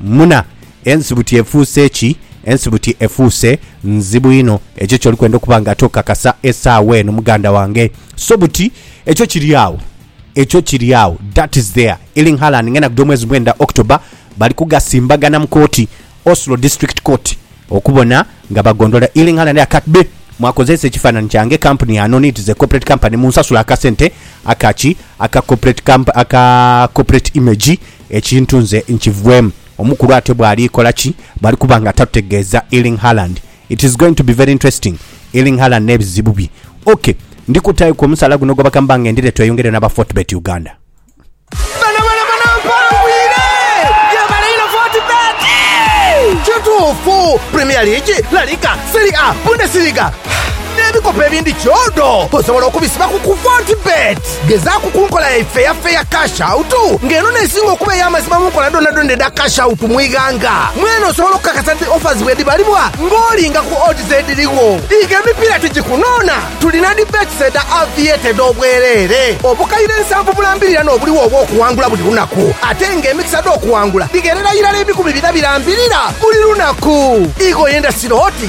Muna, ensibuti efuuse ki? Ensibuti efuuse nzibu inho. Ekyo ky'oli kwenda okuba nga ate okakasa esaawa eno, muganda wange. So buti, ekyo kiri agho. Ekyo kiri agho. That is there. Erling Haaland ng'enda kugya omwezi mwenda, October, bali kugasimbagana mu kooti, Oslo District Court, okubona nga bagondola Erling Haaland aye kat be mwakozeesa ekifaananhi kyange, kampuni ya nono, it is a corporate company, munsasule akasente aka ki, aka corporate comp, aka corporate image Ekintu nze nkivwemu. Omukulu ate bwali kola ki bwali kuba nga tatutegeeza Erling Haaland. It is going to be very interesting Erling Haaland n'ebizibu bye. Ok ndi kutayo ku omusaala guno gw'abaka mbange ndidhe tweyongere n'aba Fortebet Uganda. Bano bona bona mpangwire gyebale inho Fortebet. Kituufu, Premier League, La Liga, Serie A, Bundesliga n'ebikopo ebindi kyodo osobola okubisibaku ku Fortebet. Gezaaku ku nkola yaife eya Fair Cash Out, nga eno n'esinga okuba ey'amazima mu nkola dhoonadhoona edha Cash Out mu ighanga. Mwene osobola okukakasa nti offers bwedhibalibwa ng'olinga ku odds edhirigho. Iga emipiira tigikunoona, tulina dhi bets edha Aviator edh'obwereere, obukaire nsanvu bulambirira n'obuligho obw'okuwangula buli lunaku, ate nga emikisa dh'okuwangula dhigherera irala ebikumi bina birambirira buli lunaku. Iga oyendasire oti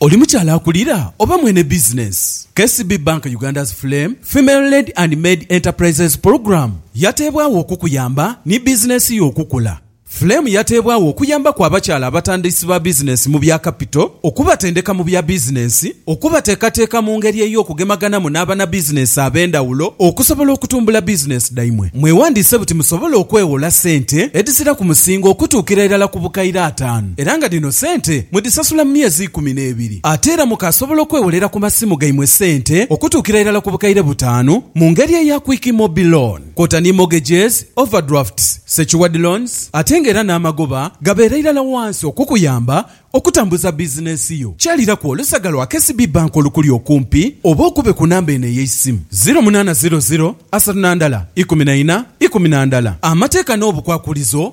Oli mukyala akulira oba mwene bizinensi? KCB Bank Uganda's Flame Female-Led and Maid Enterprises Program yateebwagho okukuyamba ni bizinensi yo okukula. Flame yateebwagho okuyambaku abakyala abatandisi ba bizinensi mu bya kapito, okubatendeka mu bya bizinensi, okubateekateeka mu ngeri ey'okugemaganamu n'abanabizinensi ab'endhawulo okusobola okutumbula bizinensi dhaimwe. Mwewandiise buti musobole okweghola sente edhiziraku musingo okutuukira irala ku bukaire ataanu. era nga dhino sente mudhisasula mu myezi ikumi n'ebiri. Ate era mukaasobola okwewolera ku masimu gaimwe sente okutuukira irala ku bukaire butaanu mu ngeri eya Quick Mobi Loan kwota ni mortgages, overdrafts, secured loans ate nga era n'amagoba gabeera irala wansi okukuyamba okutambuza bizinensi yo. Kyaliraku olusaga lwa KCB Bank olukuli okumpi oba okube ku namba eno ey'eisimu, ziro munaana ziro ziro asatu na ndala ikumi na ina ikumi na ndala. Amateeka n'obukwakulizo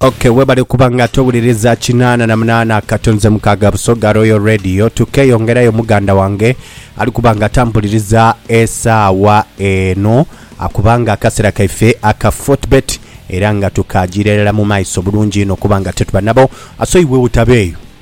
ok webale kuba nga towuliriza kinana na munana katonze mukaga busoga royal radio tukeyongerayo muganda wange ali kuba nga tambuliriza esaawa eno akubanga akasera kaife aka fortbet era nga tukagirerera mu maiso bulungi ino kuba nga tetuba nabo asoiwe utabeeyo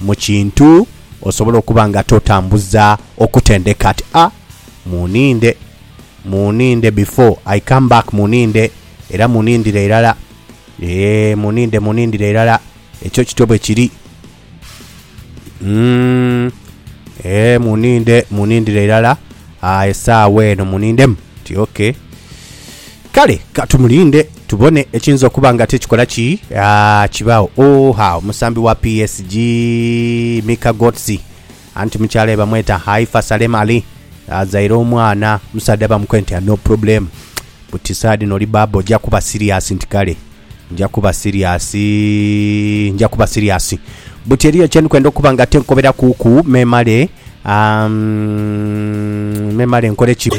Mu kintu osobola okuba nga totambuza okutendeka ati a muninde, muninde before I come back muninde era munindire irala ee muninde munindire irala ekyo kityo bwe kiri mm ee muninde munindire irala aa esaawa eno munindemu nti okay. Kale ka tumulinde tubone ekiyinza okuba nga ate kikola ki? Aah kibaagho. Ooha omusambi wa PSG, Mika Götze anti mukyalae bamweta Haifa Salem Ali azaire omwana omusaadha bamukwe nti a no problem buti saagha dhino oli baaba oja kuba siriasi nti kale nja kuba siriasi, nja kuba siriasi. Buti eriyo kye ndi kwenda okuba nga ate nkoberakuuku memale, aah, mm, memale nkole ki?